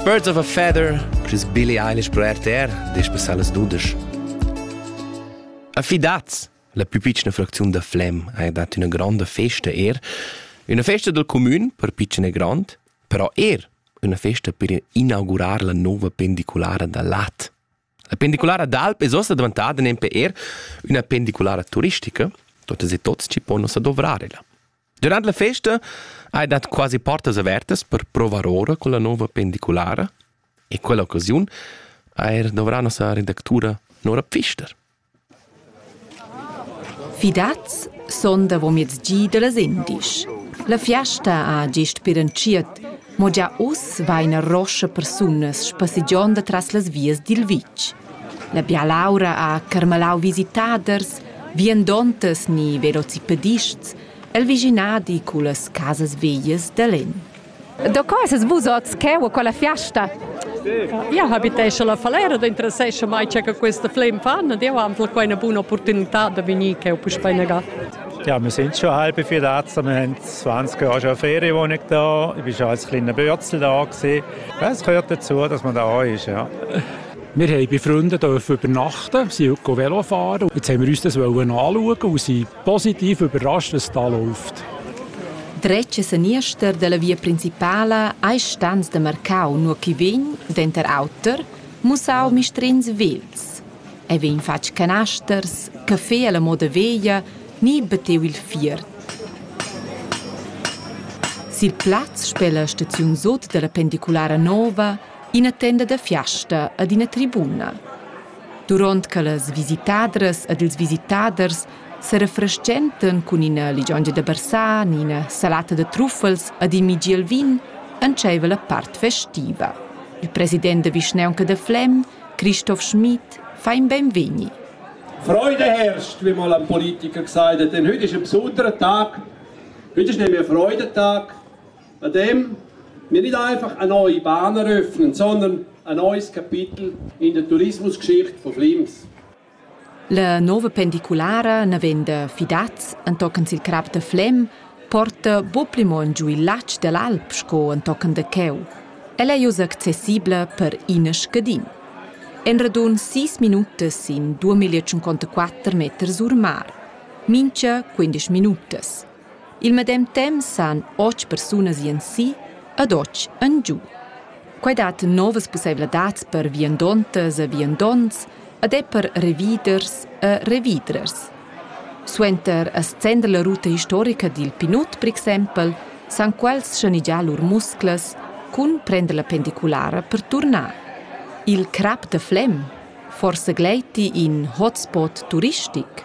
Birds of a Feather, Chris Billy Eilish pro RTR, despessà las dudas. Affidats! La più piccina fracziun da Flem ha dat üna granda festa er. Üna festa del comün per piccina e grand, però er üna festa per inaugurar la nova pendiculara da Lat. La pendiculara d'Alp es uossa davantada nempe eir üna pendiculara turistica, totas e tots ci pon ussa dovrare ella. Durant la festa hai dat quasi portas avertas per provar ora con la nova pendiculara e quella occasiun ha er dovrà nossa redactura Nora Pfister. Fidaz sun davomezdi da las indisch. La fiasta ha gist pir entschiet, mo gia uss vaina roscha persunas spassegiond atras las vias dil vitg. La bialaura ha carmalau visitaders, viandontas ni velocipedists el vischinadi cullas casas veglias da Len. Da co esses vus oz? Che u quella fiasta? Io habitesce la Falera, da interessesce mai c'è che questa flem fan ed io am quai una buona opportunità da venir che ho puspei nega. Ja, wir sind schon halb vier da, wir haben 20 Jahre schon Ferienwohnung da, ich war als kleiner Bötzl da gewesen. Das gehört dazu, dass man da ist, ja. Wir haben bei Freunden dürfen übernachten, sind Velo fahren. Jetzt haben wir uns das anschauen und sind Positiv überrascht, was da läuft. Dretg e seniester della via principala ei stans de marcau nur chi vegn, denter auter, mussau mistrins vels. E vegn fatg canasters, caffé alla moda veglia, ni bateu il fiert. Sil plaz spela staziun sot della pendiculara nova ina tenda da fiasta ad ina tribuna. Duront che las visitadras ed ils visitaders serefrestgentan cun ina ligiongia da barsar ni ina salata da truffels ed in migiel vin entscheiva la part festiva. Il president da vischnaunca da Flem, Christoph Schmid, fa in beinvegni. Freude herrscht, wie mal ein Politiker gesagt hat, denn heute ist ein besonderer Tag. Heute ist nämlich ein Freudentag. An dem, wir nicht einfach eine neue Bahn eröffnen, sondern ein neues Kapitel in der Tourismusgeschichte von Flims. La nova pendiculara, navenda Fidaz, entochen sil crap da Flem, porta buc pli mo giu il latg dell'alp sco entochen da cheu. Ella ei uss accessibla per ina scadin. En radun sis minutas in 2154 meters ur mar. Mincha 15 minutas. Il medem temps san otg persunas ir ensi ed otg engiu. Quei dat novas pusseivladads per viandontas e viandonts ed è per reviders e revidrers. Suenter a scender la ruta historica dil Pinut, per exempel, san quels schanigiar lur musclas cun prender la pendiculara per turnar. Il crap da Flem, forsa gleiti in hotspot turistic?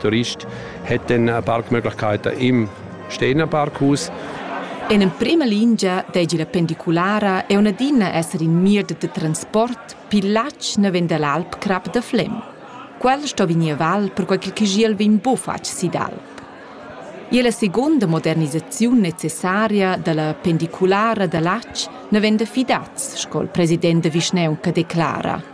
Turist hätten eine Parkmöglichkeit im Stehnerpark aus. En emprima lingia deigi la pendiculara e unadina esser in mir de transport pil latg naven dall'alpcrap da Flem. Quel sto vegnir val perquei che Chigiel vegn bufatg si d'alp. E la seconda modernisaziun necessaria dalla pendiculara da Latsch ne venda fidaz, sco il president da Vischneunca declara.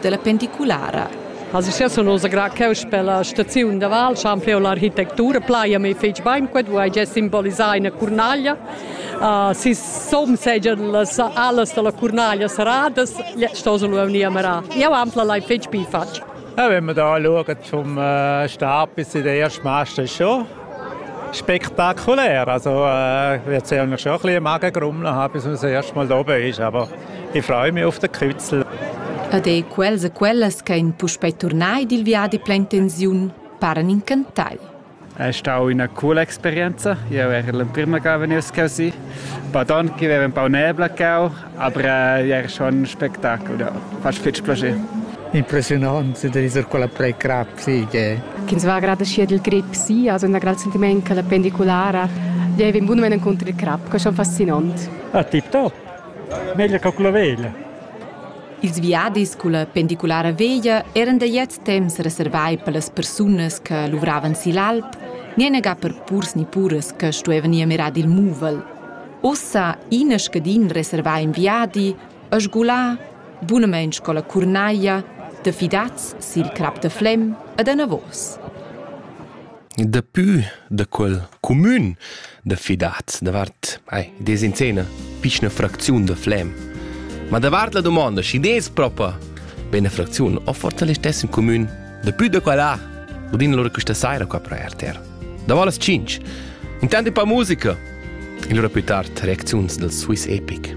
della pendiculara. Also sia sun oz gra cheu per la staziun da Val, scha ampleu l'architectura plaia me fetg bain quet, wo hai già simbolisà una Cornaglia. Uh, si som segia las alas della Cornaglia saradas, sto se lu venir a marar. Io ampla l'hai fetg bi fatg. Ja, wenn man da schaut zum äh, Stab, ist der erste Master schon. Spektakulär, also äh, erzählen wir schon ein bisschen Magengrummeln haben, bis man das erste Mal oben ist, aber ich freue mich auf den Kützl. Ed ei quels e quellas che ein puspei turnai dil viadi plein tensiun paran incantai. È stata una cool esperienza. Io ero la prima che veniva così. Poi anche avevo un po' nebla cau, Aber è er schon ein Spettacolo, ja. Fast fetg plascher. Impressionant da dieser quella pre-crap, sì, che... Ch'ins va gerade schier il grip, sì, also un grad sentiment che la pendicolara gli in buon moment contro il crap, che è schon fascinant. Ah, tip top. Meglio che con la veglia. Ils viadis con la pendicolara veglia eran da jet temps reservai per las persunas che luvravan si l'alp, nienega per purs ni puras che stuevan ir mirar il muvel. Ussa ina scadin reservà in viadi e sgulà bunamain sco la curnaia da fidats sil crap da Flem ed anavos. Daplü da quel cumün da fidats davart ai, des in scena piçna fracziun da Flem. Ma davart la domanda, schi des propa bene fracziun, ho forse l'estessen cumün daplü da quella udin loro questa saira qua pro RTR. Davo las 5. Intant e pa musica! Il lura plü tard reacziuns dal Swiss Epic.